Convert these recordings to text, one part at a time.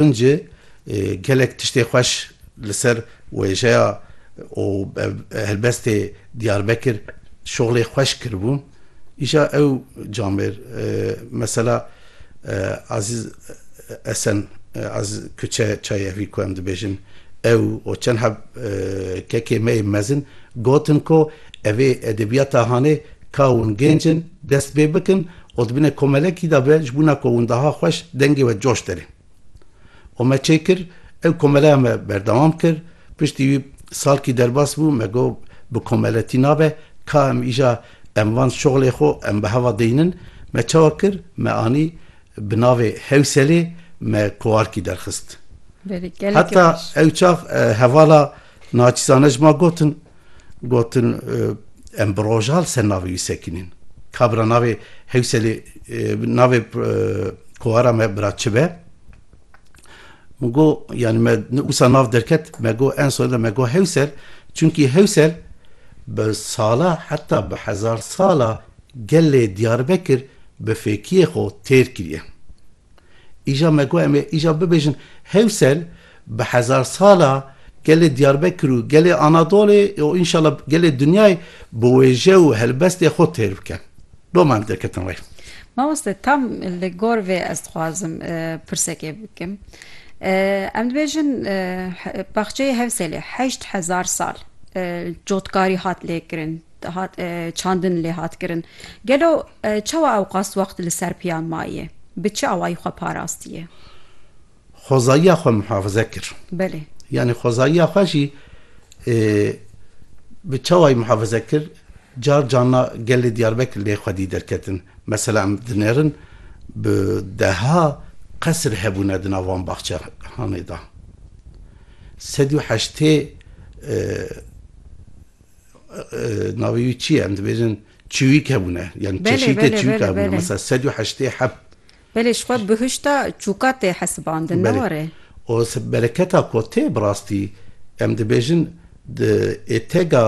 Tuncê gelek tiştê xweş li ser wêjeya û helbestê Diyarbekir şoxlê xweş kiribû. Îja ew camêr mesela Azîz Esen, Azîz Kuçe Çayevî ku em dibêjin, ew û çend heb kekê me ê mezin gotin ku evê edebiyata hanê ka hûn gêncin dest pê bikin Û di binê komelekî de be ji bûna ku windaha xweş dengê we coş derê. Û me çê kir, ew komeleya me berdewam kir, piştî wî salkî derbas bû, me got bi komeletî nabe, ka em îja em van şoxlê xwe em bi heva deynin, me çawa kir, me anî bi navê Hewselê me koarkî derxist. Heta ew çax hevala. Naçîzane ji ma gotin, gotin em bi roja li ser navê wî sekinîn. Kabira navê Hewselê navê kovara me bira çi be? Min go yanî me wisa nav derket me go en soyda me go Hewsel çunkî Hewsel bi sala heta bi hezar sala gelê Diyarbekir bi fêkiyê xwe têr kiriye. Îja me ku em ê îja bibêjin Hewsel bi hezar sala gelê Diyarbekir û gelê Anadolê û înşala gelê dinyayê bi wêje û helbestê xwe têr bikin. Doma em derketin rê. Mamoste tam li gor vê ez dixwazim pirsekê bikim. Em dibêjin baxçeyê Hewselê heşt hezar sal cotkarî hat lêkirin. dihat çandin lê hat kirin. Gelo çawa ewqas wext li ser piyan maye? Bi çi awayî xwe parastiye? Xwezayiya xwe muhafize kir. Belê. Yanî xwezayiya xwe jî bi çawayî muhafize kir? Car carna gelê Diyarbekir lê xwedî derketin. Mesela em dinerin bi deha qesir hebûne di nav van baxçehanê de. Sed û heştê Navê wî çi ye? Em dibêjin çiwîk hebûne. Yan çeşîtê çiwîk hebûne. Mesela sed û heştê heft. Belê ji xwe bihişta çûka tê hesibandin ne were. O bereketa ku tê bi rastî em dibêjin di êtega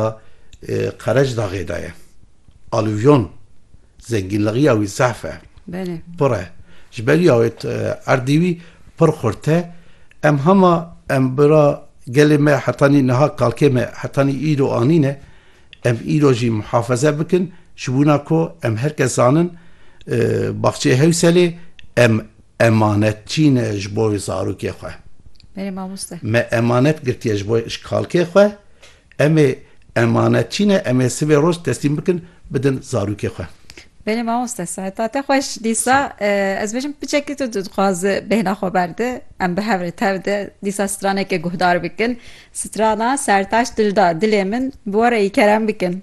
Qerecdaxê de ye. Aluvyon. Zengînligiya wî zehf e. Belê. Pir e. Ji ber ya wê erdê wî pir xurt e. Em hema em bira gelê me hetanî niha kalkê me hetanî îro anîne. Em îro jî muhafeze bikin ji wina ku em her kes zanin Baxçeyê Hewselê em emanetçî ne ji bo zarokê xwe. Belê mamoste. Me emanet girtiye ji bo ji kalkê xwe Em ê emanetçî ne, em ê sibê roj teslîm bikin, bidin zarokê xwe. Belê mamoste saeta te xweş dîsa ez dibêjim piçekî tu dixwaz bêhna xwe berde em bi hev re tev de dîsa stranekê guhdar bikin strana sertaç dilda dilê min bi we re î kerem bikin.